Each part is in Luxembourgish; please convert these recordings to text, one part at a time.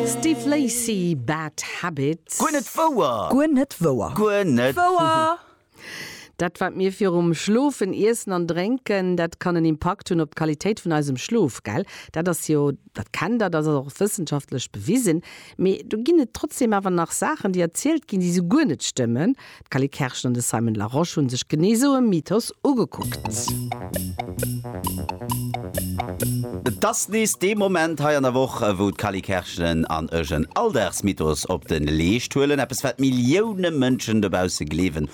Steve Lacy, Bad Habit. Guer net wouer! Guer net wouer! Guer net wouer! Dat wat mir virum Schlofen iessen an drénken, dat kann en Impakt hunn op d'Qualitéit vun eisem Schlof, gell? Dat ass jo, dat kennt der, dat ass och wëssenschaftlech bewisen. Mee do ginn et trotzdeem awer nach Saachen, déi erzielt ginn, déi esou guer net stëmmen. D'Cally Kerschen an de Simon Larosche hunn sech genee esou e Mythos ugekuckt. Et ass nees dee Moment hei an der Woch, wou d'Cally Kerschen an ech en Alldagsmythos op de Leescht huelen. Eppes wat Millioune Mënschen dobausse gleewen,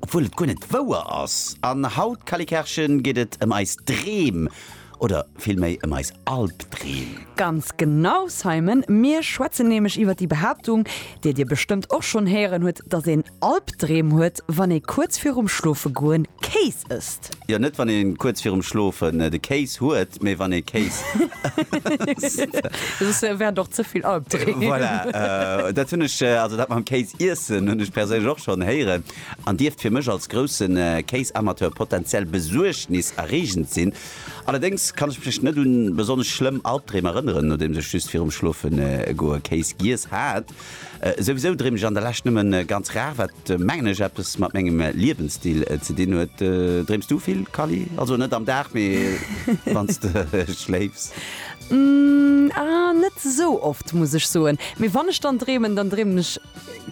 obwuel et guer net wouer ass. An haut, Cally Kerschen, geet et ëm eis Dreem. Oder villméi ëm eis Albdreem? Ganz genau, Simon! Mir schwätzen nämlech iwwer déi Behaaptung, déi dir bestëmmt och schonn héieren hutt, dass een Albdreem huet, wann ee kuerz virum Schlofegoen Kéis ësst. Jo, net wann ee kuerz virum Schlofen de Kéis huet, mee wann ee Kéis ësst. Soss wären et och ze vill Albdreem. Voilà, dat hunn ech, also dat mam Kéis iessen hunn ech perséinlech och schonn héieren. an dierft fir mech als grousse Kéisamateur potenziell besuergniserreegend sinn. Allerdéngs kann ech mech net un besonnesch schlëmm Albdreem erënneren, nodeems ech just virum Schlofegoe Kéis giess hat. Souwisou dreem ech an der Lescht nëmme ganz rar, wat mengen ech eppes mat mengem Liewensstil ze dinn huet. Dreems du vill, Kally? Also net am Dag, mee wann s de schléifs? Ahh, net esou oft, muss ech soen. Mee wann ech dann dreemen, dann dreemen ech.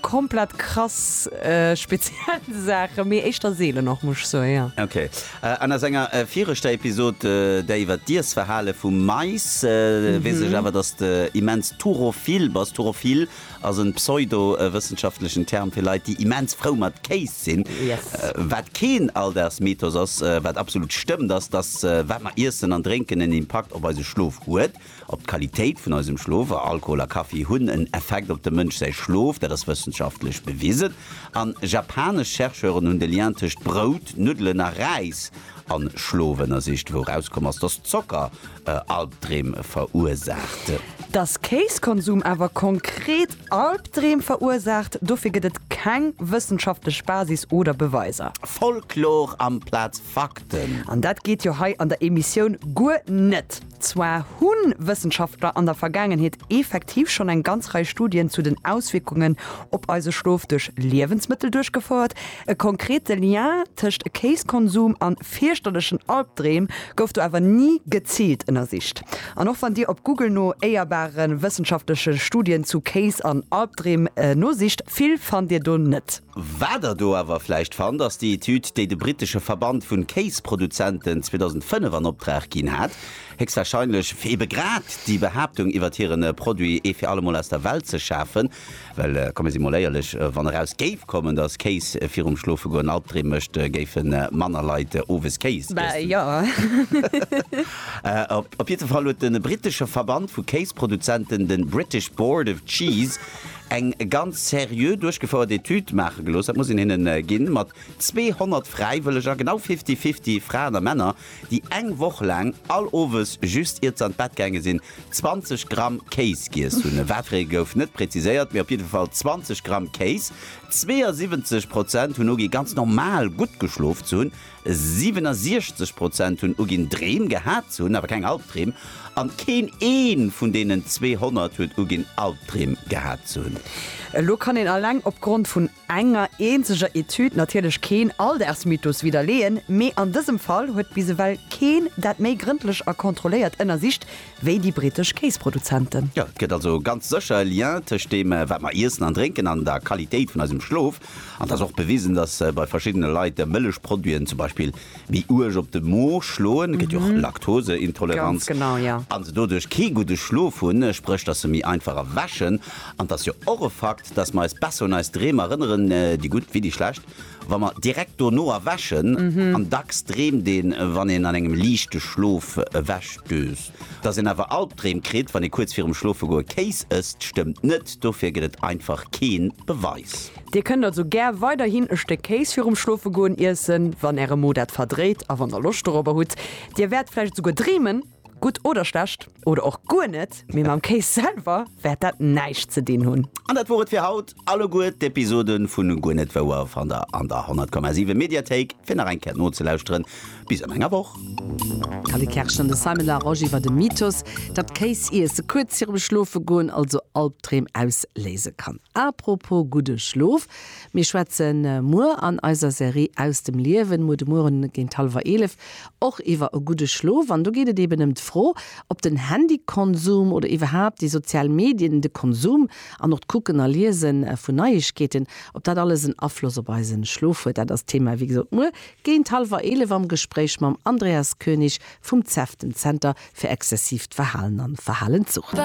Komplett krass speziell Saachen, mee éischter seelen och, muss ech soen, jo. Ok. An a senger viregter Episod, där iwwer d'Iessverhale vum Mais, weess ech awer, dass de immens turophil bass. Turophil ass en pseudo-wëssenschaftlechen Term fir Leit, déi immens frou mat Kéis sinn. Yes. Wat keen Alldagsmythos ass, wat absolut stëmmt, ass, dass wat mer iessen an drénken en Impakt op eise Schlof huet. Op d'Qualitéit vun eisem Schlof, a Alkohol a Kaffi hunn en Effekt op dem Mënsch säi Schlof, dat ass wëssenschaftlech bewisen. A japanesch Chercheuren hunn de Lien tëscht Brout, Nuddelen a Räis a Schlof ënnersicht, wou erauskomm ass, dass Zocker Albdreem verursaacht. Dass Kéiskonsum awer konkret Albdreem verursaacht, dofir gëtt et keng wëssenschaftlech Basis oder Beweiser. Folklor amplaz Fakten! An dat geet jo hei an der Emissioun guer net! Zwar hu Wëssenschaftler an der Vergaangenheet effektiv schonn eng ganz Rei Studien zu den Auswierkungen op eise Schlof duerch Liewensmëttel duerchgefouert. E konkrete Lien tëscht Kéiskonsum an fierchterlechen Albdreem gouf do awer ni geziilt ënnersicht. An och wann Dir op Google no éierbare wëssenschaftleche Studien zu Kéis an Albdreem nosicht, vill fannt Dir do net. Wat der do awer vläicht fannt, ass déi Etüd, déi de brittesche Verband vun Kéisproduzenten 2005 an Opdrag ginn hat, héchstwahrscheinlech fir ebe grad déi Behaaptung iwwert hiren Produit ee fir allemol aus der Welt ze schafen. Well komme si mol éierlech, wann eraus géif kommen, dass Kéis virum Schlofegoen Albdreem mécht, géife manner Leit owes Kéis iessen. Op jiddwer Fall huet de brittesche Verband vu Kéisproduzenten, de British Board of Cheese, eng ganz seriö duerchgefouert Etüd maache gelooss, dat muss een hinnen ginn, mat 200 Fräiwëlleger, genau fifty-fifty Fraen a Männer, déi eng Woch laang all Owes, just iert se an d'Bett gaange sinn, 20 Gramm Kéis giess hunn. Watfir ee gouf net präziséiert, mee op jidde Fall 20 Gramm Kéis. 72 Prozent hunn ugi ganz normal gutt geschlof ze hunn, 67 Prozent hunn uginn, Dreem gehat ze hunn, awer keng Albdreem. An keen ee vun deenen 200 huet uginn, Albdreem gehat ze hunn. Elo kann een alleng opgrond vun enger eenzeger Etüd natierlech keen Alldaagsmythos widderleeën, mee an dësem Fall huet bis ewell keen dat méi grëndlech a kontrolléiert ënnersicht wéi déi brittesch Kéisproduzenten. Jo, et gëtt also ganz sécher e Lien tëscht deem, wat mer iessen an drénken, an der Qualitéit vun eisem Schlof. An et ass och bewisen, datt bei verschiddene Leit Mëllechproduiten zum Beispill méi uerg op de Mo schloen, et gëtt jo och Laktoseintoleranz, a se doduerch kee gudde Schlof hunn, spréch datt se méi einfach erwächen. An et ass jo och e Fakt, datt mer eis besser un eis Dreem erënneren, déi gutt wéi déi schlecht, wa mer direkt dono erwächen. An dacks dreemt een, wann een an engem liichte Schlof ewechdöst. Dass een awer Albdreem kritt, wann ee kuerz virum Schlofegoe Kéis ësst, stëmmt net. Dofir gëtt et einfach kee Beweis. Dir kënnt also gär weiderhin e Stéck Kéis virum Schlofegoen iessen, wann Äre Mo dat verdréit a wann Der Loscht dorobber hutt. Dir wäert vläicht esouguer dreemen, gutt oder schlecht, oder och guer net, mee mam Kéis selwer wäert dat näischt ze dinn hunn. An dat wor et fir haut. Alleguer d'Episoden vu Guer net wouer fannt der an der 100,7 Mediathéik fir nach eng Kéier nozelauschteren. Bis an enger Woch. D'Cally Kersch an de Simon Larosche iwwer de Mythos, datt Kéis iesse kuerz virum Schlofegoen also Albdreem ausléise kann. Apropos gudde Schlof, mir schwätze muer an eiser Serie Aus dem Liewen, muer de Mueren géint hallwer eelef, och iwwer e gudde Schlof. An do geet et eben ëm d'Fro, ob den Handykonsum oder iwwerhaapt déi sozial Medien, de Konsum, An och d'Kucken a Liese vun Neiegkeeten, ob dat alles en Afloss op eisen Schlof huet, dat ass d'Thema, wéi gesot, muer géint hallwer 11 am Gespréich mam Andreas König vum cef, dem Zenter fir exzessiivt Verhalen an Verhalenssucht.